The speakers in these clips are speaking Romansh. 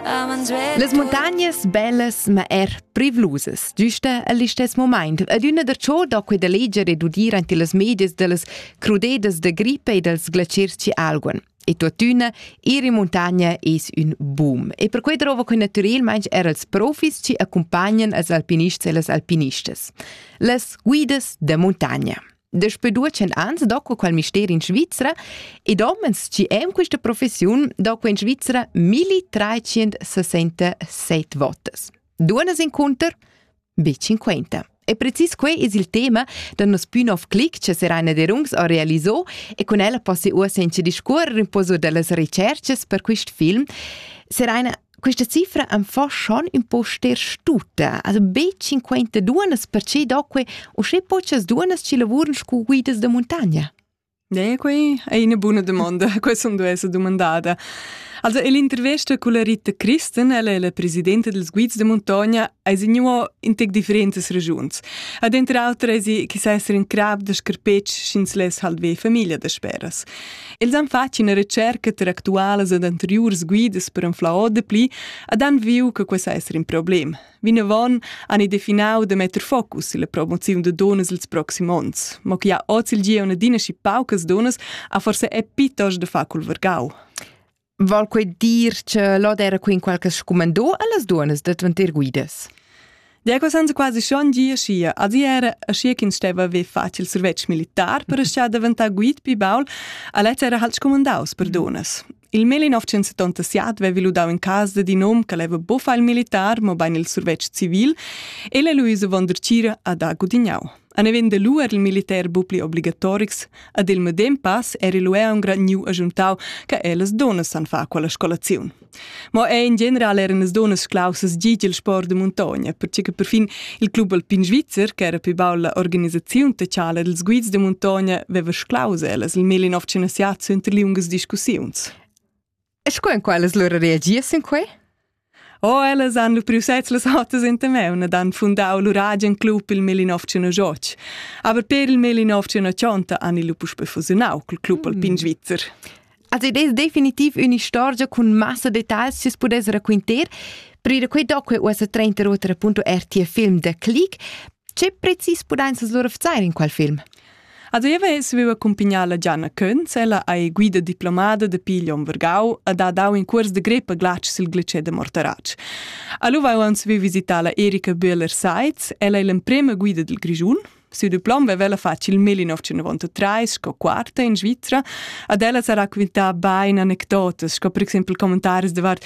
Las montagnas bellas ma er privlusas, giusta al istess moment. Adüna da ciò da queda leger e d'udir ante las medias dellas crudedas da grippa e dels glaciers ci alguan. E tuottüna, ir in montagna es ün boom. E per quei drova que natürelmaing er als profis ci accompagnan als alpinists e las alpinistas. Las guidas da montagna. Daspö due ans do quel mister in Svizra ed homens chi han questa professiun do in Svizra 1367 votas. Dunas inconter? Be 50. E precis quei es il tema da nos pü nov clic che Serena Derungs ha realiso e con ella possi uossa in discuorrer un pozo dellas recerches per quist film. Serena, Questa cifra am fa schon un po ster stuta, also be 52 perché doque usché pochas dunas ci lavuran scu guidas da montagna. Ne, quei è una buona domanda, questa non è domandata. Also l'intervesta con la Rita Christen, ella è la presidente dels guids de montagna, è signua in tec differentas regiuns. Ad entre altre è si che sa essere in crab de scarpetsch schins les halve famiglia de speras. Els han fatg ina recerca tar actualas ed anteriurs guidas per anflar ord dapli ed han viu che quei sa esser in problem. Vinavon han ei definau da metter focus sulla promoziun da donas ils proxim onns. Ma che ha oz il gieu adina schi paucas donas ha forse è piuttosto da far col vargau. Val quei dir che l'od era qui in qualche scumandò allas duonas da dvantir guidas? Diego senza quasi schon gia schia, asi era schia ch'ins steva ve facil survetsch militar per schia daventar guid pi baul, alets era halt scumandaus per donas. Il mel in 977 vevi ludau in casa di nom che leva buffa il militar, ma bein il survetsch civil, e le Luisa von der Cira ad ha gudignau. Aneven de lu er il militer bu pli obligatorics, ad il medem pass er il ea un granniu ajuntau, che ellas donas san fa quella scolaziun. Ma è in general eran las donas clausas gig il sport de muntogna, perché che perfin il club alpin svizzer, che era più baul la organisazione de tschala dels guids de muntogna, veva sclause ellas il 1905 unter liungas discussiuns. E sco en quellas lura reagies sin quei? O, ellas han lu priu sez las hotas enta meun ed han fundau lur agen club il Melinovcino Joc. Aber per il Melinovcino Cionta han ils lu puspei fusiunau cul club mm. alpin svizzer. Also ed es definitiv un'istorgia con massa details si pudess raquinter. Prima quei doc è uossa 30 rotera punto RT film de Click. Ce precis pudein sa lur verzeier in quel film? A dueva ins viver accumpagnà la Gianna Könz, ella ei guida diplomada da Piglion Vergau e ha dau in cuors de greppa glatsch sil glicè de Mortaratsch. Allora avevans vi visità la Erika Böhler-Seitz, ella è l'emprema guida del Grischun, Siu diplom vev'ella fatg il 1993 sco quarta in Svizra, ad ella sa raquintà bein anecdotas, sco per exempel commentaris davart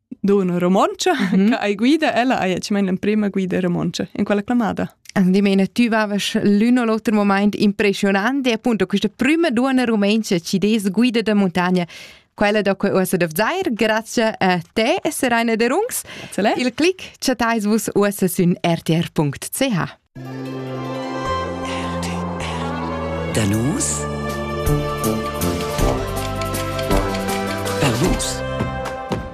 da una romoncia mm -hmm. che hai guida ella hai ci meinen prima guida romoncia in quella clamada Di meine, tu vaves l'uno l'altro moment impressionante, appunto, questa prima donna romancia ci des guida da montagna, quella da cui uossa dov zair, grazie a te, Serena de Rungs. Il clic chattais vus uossa sün rtr.ch. Danus Perlus